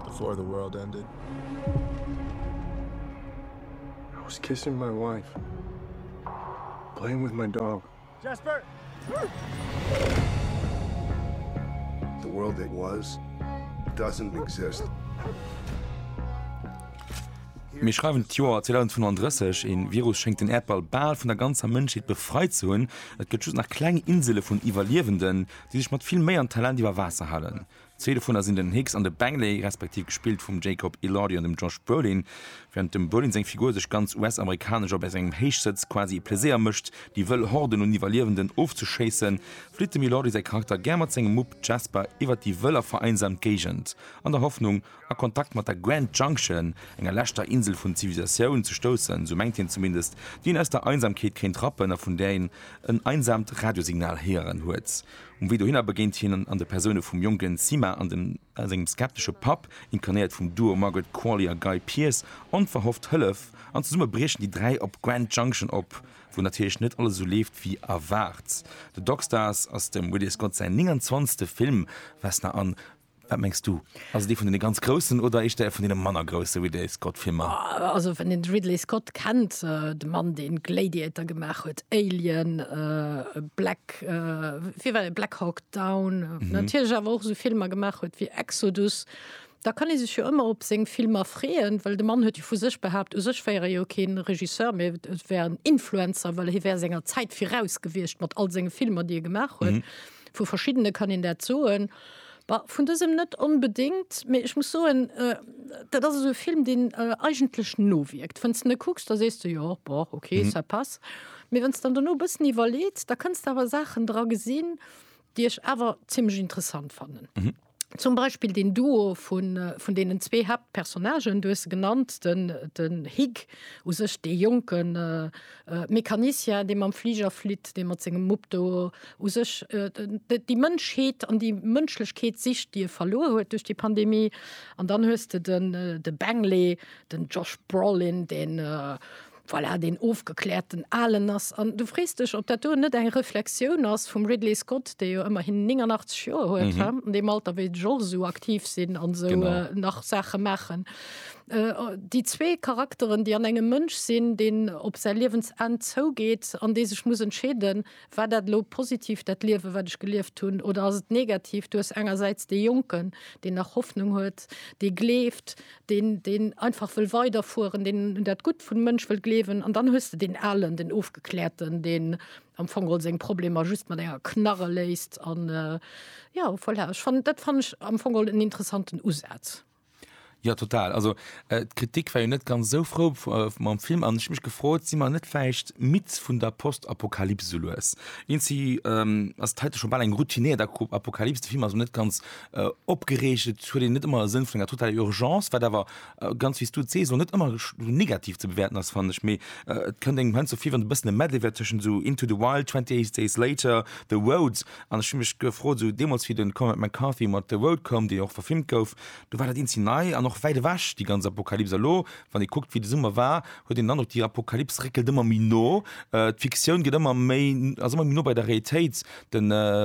Before the world ended. I was kissing my wife. Playing with my dog. Jasper! The world that was doesn't exist. Mir schreiwen d'Joer 2035, een Virus schéngt den Äerdball bal vun der ganzer Mënschheet befreit ze hunn. Et gëtt just nach kleng Insele vun Iwwerliewenden, déi sech mat vill Méi an Talent iwwer Waasser halen. Zwee dovunner sinn den Hicks an de Bangley, respektiv gespillt vum Jacob Elordi an dem Josh Brolin. Wärend dem Brolin seng Figur sech ganz US-amerikanesch a bei sengem Héichsëtz quasi e Pleséier mécht, déi wëll Horden un Iwwerliewenden ofzeschéissen, flitt dem Elordi säi Charakter gär mat sengem Mupp Jasper iwwert déi wëll a vereinsamt Géigend, an der Hoffnung, a Kontakt mat der Grand Junction, enger leschter Insel vun Zivilisatioun, ze stoussen, sou mengt hien zumindest, déi een aus der Einsamkeet kéint rappen a vun där een en einsaamt Radiosignal héieren huet. Um Wee dohinner begéint hien an de Persoune vum jonken Sima a sengem skeptesche Papp, inkarnéiert vum Duo Margaret Qualley a Guy Pearce, onverhofft Hëllef, an zesumme briechen déi dräi op Grand Junction op, wou natierlech net alles esou leeft wéi erwaart. The Dockstars ass dem Ridley Scott säin 29. Film, wes na an. Wat mengs du? Ass et ee vun deene ganz Groussen oder éischter ee vun deene manner grousse Ridley Scott-Filmer? Also wann een de Ridley Scott kennt, de Mann deen Gladiator gemaach huet, Alien, Black, wéi war deen, Black Hawk Down, natierlech awer och esou Filmer gemaach huet wéi Exodus, da kann ee sech jo ëmmer op seng Filmer freeën, well de Mann huet jo vu sech behaapt, u sech wär e jo keen Regisseur, mee e wär en Influencer, well hie wär senger Zäit viraus gewiescht mat all senge Filmer déi e gemaach huet. Vu verschiddene kann een dat soen. Bah, vun dësem net onbedéngt, mee ech muss soen, dat ass esou e Film, deen eigentlech nowierkt. Wann s de e kucks, da sees de, Jo, bon, ok, ça passe. Mee wann s de dann dono e bëssen iwwerleets, da kënns de awer Saachen dra gesinn, déi ech awer zimlech interessant fannen. Zum Beispill deen Duo vun deenen zwee Haaptpersonnagen, du hues se genannt, den Hig, u sech dee jonken Mecanicien, dee mam Fliger flitt, dee mat sengem Mupp do u sech déi Mënschheet an déi Mënschlechkeet sicht, déi e verluer huet duerch déi Pandemie. An dann hues de den de Bengele, den Josh Brolin, deen voilà, deen ofgekläerten Alen ass. An du frees dech, ob dat do net eng Reflexioun ass vum Ridley Scott, dee jo ëmmerhin 89 Joer huet, an deem Alter wéi ech och esou aktiv sinn an esou nach Saache maachen. Déi zwee Charakteren, déi an engem Mënsch sinn, deen op säi Liewensenn zougeet an dee sech muss entscheeden, War dat elo positiv, dat Liewe wat ech gelieft hunn, oder ass et negativ? Du hues engersäits dee Jonken, deen nach Hoffnung huet, dee gleeft, deen deen einfach wëll weiderfueren, deen un dat Gutt vum Mënsch wëll gleewen, an dann hues de deen Alen, den Ofgekläerten, deen am Fong geholl seng Problemer just mat enger Knarre léist. An jo, voilà, ech fannen, dat fannen ech am Fong geholl en interessanten Usaz. Jo total, also d'Kritik war jo net ganz esou frou mam Film an ech hu mech gefrot, si mer net vläicht midd vun der Postapokalyps esou lues? Ins si ass et heite scho bal eng routiniert Apokalyps, de Film ass och net ganz opgereegt, et huet een net ëmmer e Sënn vun enger totaler Urgence, wat awer ganz wéi s du et sees och net ëmmer esou negativ ze bewäerten ass fannen ech, mee et kënnt engem heiansdo vir wéi wann e bëssen e Medley wär tëschent esou Into the Wild, Twenty Eight Days Later, The Road. An ech hu mech gefrot, esou deemools, wéi de Cormac McCarthy mat The Road koum, dee jo och verfilmt gouf, do war dat eenzel nei an och wäit ewech, déi ganz Apokalyps. Elo, wann ee kuckt, wéi de Summer war, huet een den Androck, déi Apokalyps réckelt ëmmer méi no. D'Fiktioun gëtt ëmmer méi, ass ëmmer méi no bei der Realitéit. De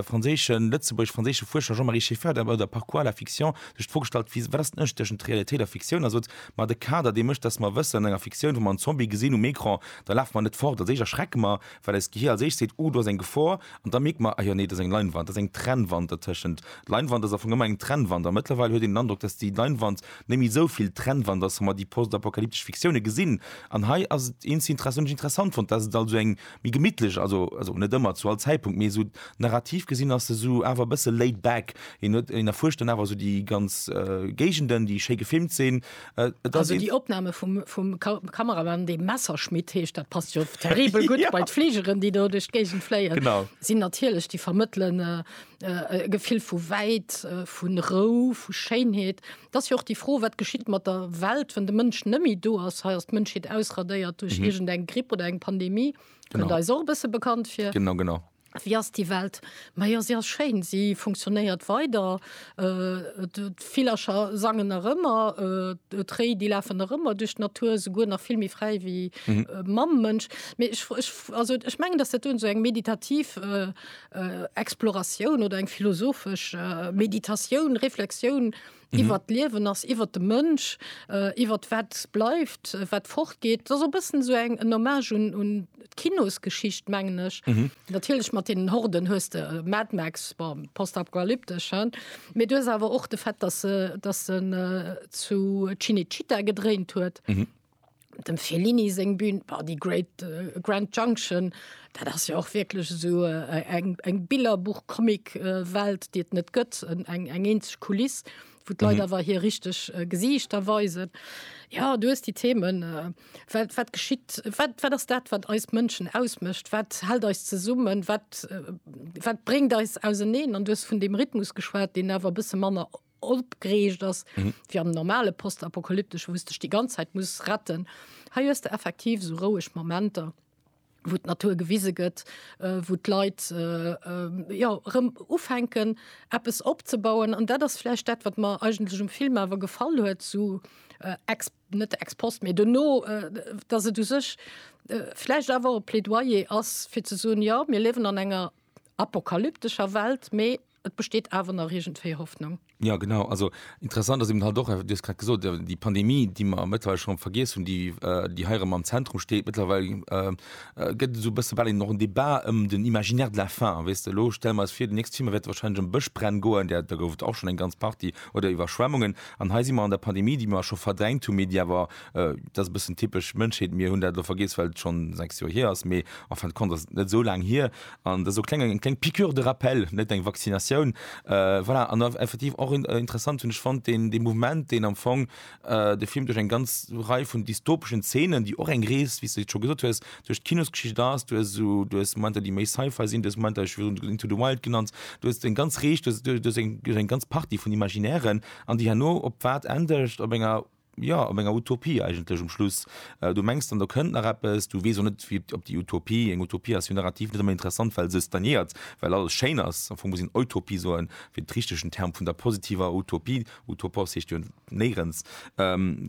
franséischen, lëtzebuergesch-franséische Fuerscher Jean-Marie Scheffer, den Auteur Parcours à la fiction, huet sech d'Fro gestallt, wéi, wat ass den Ënnerscheed tëschent Realitéit a Fiktioun? A sot, ma de Kader, dee mécht, dass mer wëssen, an enger Fiktioun, wa mer en Zombie gesinn um Ecran, da lafe mer net fort, als éischt erschrecke mer, Well eist Gehir als éischt seet, Uh, do ass eng Gefor. An da mierkt mer, Ah jo, nee, do ass eng Leinwand. Do ass eng Trennwand dertëschent. Leinwand ass am Fong ëmmer eng Trennwand. A mëttlerweil huet een den Androck, dass déi Leinwand net méi esou vill Trennwand ass, wa mer déi postapokalyptesch Fiktioune gesinn. An hei ass et eens inter-essant, hunn ech interessant fonnt, dass et also eng méi gemittlesch, also, also net ëmmer, zu all Zäitpunkt, mee esou narrativ gesinn ass se esou awer e bësse laid back. Een huet, een erfuerscht dann awer esou déi ganz Géigenden, déi schéi gefilmt sinn. Äh, also déi Opname vum, vum Kameramann de Messerschmidt heescht dat passt jo terribel gut ja. bei d'Fliegeren, déi do duch d'Géigend fléien. sinn natierlech déi vermëttelen äh, äh, e Gefill vu wäit, äh, vun Rou, vu Schéinheet. Dat ass jo och déi Fro, wat geschitt mat der Welt, wann de Mënsch nëmmi do ass, hei ass d'Mënschheet ausradéiert duerch mhm. irgend eng Gripp oder eng Pandemie. Kënnt eis och e bësse bekannt fir. Genau, genau. Wéi ass déi Welt? Ma jo, se ass schéin, se funktionéiert weider, d'Villercher sangen nach ëmmer, d'Réi, déi lafen nach ëmmer duerch d'Natur, esouguer nach vill méi fräi wéi mam Mënsch. Mee ech, ech, also ech mengen, datt dat do esou eng meditativ Exploratioun oder eng philosophesch Meditatioun, Reflexioun, iwwert d'Liewen ass, iwwert de Mënsch, äh, iwwert wat bleift, äh, wat fortgeet. Dat ass e bëssen so eng en Hommage un, un d'Kinosgeschicht, mengen ech. Mhm. Natierlech mat den Horden hues de äh, Mad Max, bon, postapokalyptesch, hein? Mee du hues awer och de Fait, dass se dass se äh, zu Cinecittà gedréint huet. Mhm. dem Fellini seng Bühn war die Great äh, Grand Junction, dat ass ja och wirklich so äh, eng, eng Billerbuch Comic äh, Welt, déi et net gëtt, eng, eng eenzeg Kuliss, wo d'Leit mhm. awer hier richtig äh, Gesichter weisen. Ja du hast die Themen äh, wat, wat geschitt, wat, wat ass dat, wat eis Mënschen ausmëscht, wat hält eis zesummen, wat, äh, wat bringt eis auseneen an du hast vun dem Rhythmus geschwat, den awer bësse manner opgereegt ass wéi am normale postapokalyptesche wou s dech déi ganz Zäit muss retten. Hei hues de effektiv sou roueg Momenter wou d'Natur gewise gëtt, wou d'Leit jo erëm ufänken eppes opzebauen an dat ass vläicht dat wat mer eigentlech um Film awer gefall huet sou ex net ex post mee duerno, datt et u sech vläicht awer e Plädoyer ass fir ze soen, jo mir liewen an enger apokalyptescher Welt mee Et besteet awer nach iergendwéi Hoffnung. Ja genau, also interessant ass eben halt och, du hues grad gesot, der- déi Pandemie, déi mer mëttlerweile schonn vergiess hunn, déi, äh, déi hei erëm am Zentrum steet mëttlerweil, äh, äh, gëtt esou e bësse bal een och en Débat ëm den Imaginaire de la faim, weess de. Elo stelle mer eis vir, den nächste Film wäert wahrscheinlech ëm Bëschbränn goen, där, do gouf et och schonn eng ganz Partie, oder Iwwerschwemmungen. An hei si mer an der Pandemie, déi mer scho verdrängt hunn, mee déi awer, äh, dat ass e bëssen typesch Mënschheet, mir hunn dat elo vergiess, well et schonn sechs Joer hier ass, mee en fin de compte ass et net esou laang hier. An dat ass och eng kleng Piqûre de rappel, net eng Vaccinatioun. Voilà, an effektiv och interessant hunn ech fonnt deen dee Mouvement, deen am Fong de Film duerch eng ganz Rei vun dystopeschen Zeenen, déi och eng Rees, wéi s de scho gesot hues, duerch d'Kinosgeschicht ass. Du hues esou, du hues Momenter, déi méi Sci-Fi sinn, du hues Momenter, ech hu virun Into the Wild genannt, du hues eng ganz Rees, du hues eng ganz Partie vun Imaginären, an déi herno op wat endegt? Op enger jo, op enger Utopie eigentlech um Schluss. Du mengs dann, do kënnt nach eppes, du weess och net, wéi, ob déi Utopie, eng Utopie ass jo narrativ net ëmmer interessant, well se stagnéiert, well alles schéin ass. Am Fong muss een Eutopie soen, fir de richtegen Term vun der positiver Utopie, utopos heescht jo néierens,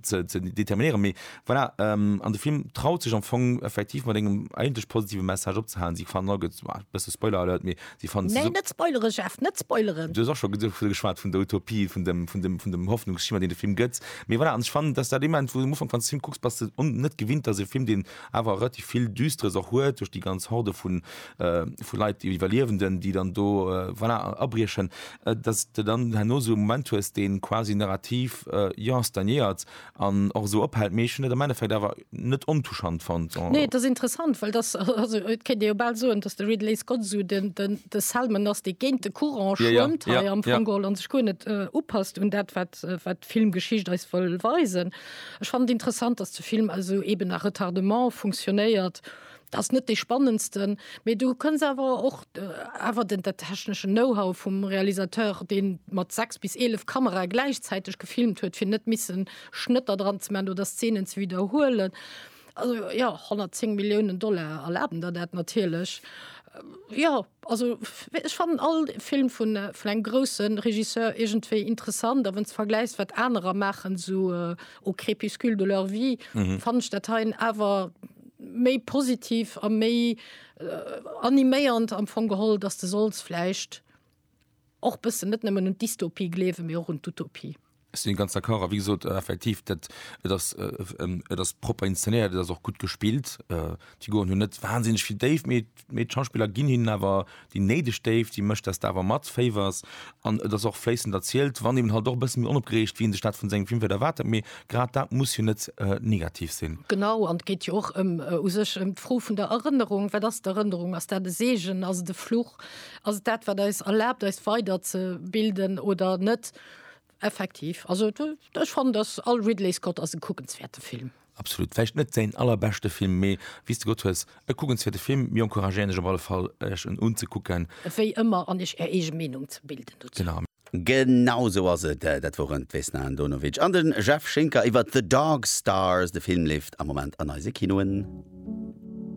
ze determinéieren. Mee voilà, an de Film traut sech am Fong effektiv mat engem eigentlech positive Message opzehalen. Si fannen all, gëtt, bësse Spoiler-Alert, mee Déi fannen se. Nee, net spoileren, Jeff, net spoileren! Du hues och scho dovu geschwat, vun der Utopie, vun dem, vun dem, vun dem Hoffnungsschimmer, deen de Film gëtt. Mee voilà, an ech fannen, dass dat dee Moment, wou du um Ufank, wann s de de Film kucks, bass de un, net gewinnt, dass e Film, deen awer relativ vill Düsteres och huet, duerch déi ganz Horde vu, vu Leit, déi Iwwerliewenden, déi dann do, voilà, abriechen, dass s de dann herno esou e Moment hues, dee quasi narrativ, jo, stagnéiert, an och esou ophält, mee ech hunn et am Endeffekt awer net ontouchant fonnt. Nee, et ass interessant, well dass, also et kéint ee jo bal soen, dass de Ridley Scott esou den, den, de Selman ass, dee géint de Courant Ja, ja, schwëmmt hei ja, am ja. Fong geholl an sech guer net upasst un dat, wat, wat d'Filmgeschicht eis wëll weisen. Ech fannen et interessant, dass de Film also eben à retardement funktionéiert, Ass net dee spannendsten, mee du kënns awer och awer den der techneschen Know-how vum Realisateur, dee mat 6 bis 11 Kamerae gläichzäiteg gefilmt huet, fir net missen Schnëtter dran ze maachen oder Szenen ze widderhuelen. Also, jo, 110 Milliounen Dollar erlaben der dat natierlech. Jo. Also ech fannen all Film vun vun engem grousse Regisseur iergendwéi interessant, a wann s vergläichs wat anerer maachen, esou Au crépuscule de leur vie, fannen ech dat heien awer méi positiv a méi animéiernd am Fong geholl, datt s de solls vläicht, Och bëssen, net nëmmen un d'Dystopie gleewen, mee och un d'Utopie. Ech sinn ganz d'accord. A wéi gesot, effektiv, dat, et ass, et ass propper inszenéiert, et ass och gutt gespillt. D'Figuren hunn net wahnsinneg vill Déift, mee, mee d'Schauspiller ginn hinnen awer déi néideg Déift, déi mécht, dass de awer matféiwers. An et ass och fléissend erzielt, wann eben halt och e bësse méi onopgereegt, wéi ee sech dat vun sengem Film vläicht erwaart hätt. Mee grad dat muss jo net negativ sinn. Genau, an et geet jo och ëm, u sech ëm d'Fro vun der Erënnerung. Wat ass d'Erënnerung? Ass dat e Seegen? Ass et e Fluch? Ass et dat, wat eis erlaabt, eis weider ze bilden oder net? Effektiv. Also ech fannen, datt all Ridley Scott ass e kuckenswäerte Film. Absolut. Vläicht net säin allerbeschte Film, mee wéi s de gesot hues, e kuckenswäerte Film. Mir encouragéieren Iech op alle Fall, Iech en unzekucken. Wéi ëmmer, an Iech Är eege Meenung ze bilden dozou. Genau. Genau sou ass et. Dat woren d'Vesna Andonovic an de Jeff Schinker iwwert The Dog Stars. De Film leeft am Moment an eise Kinoen.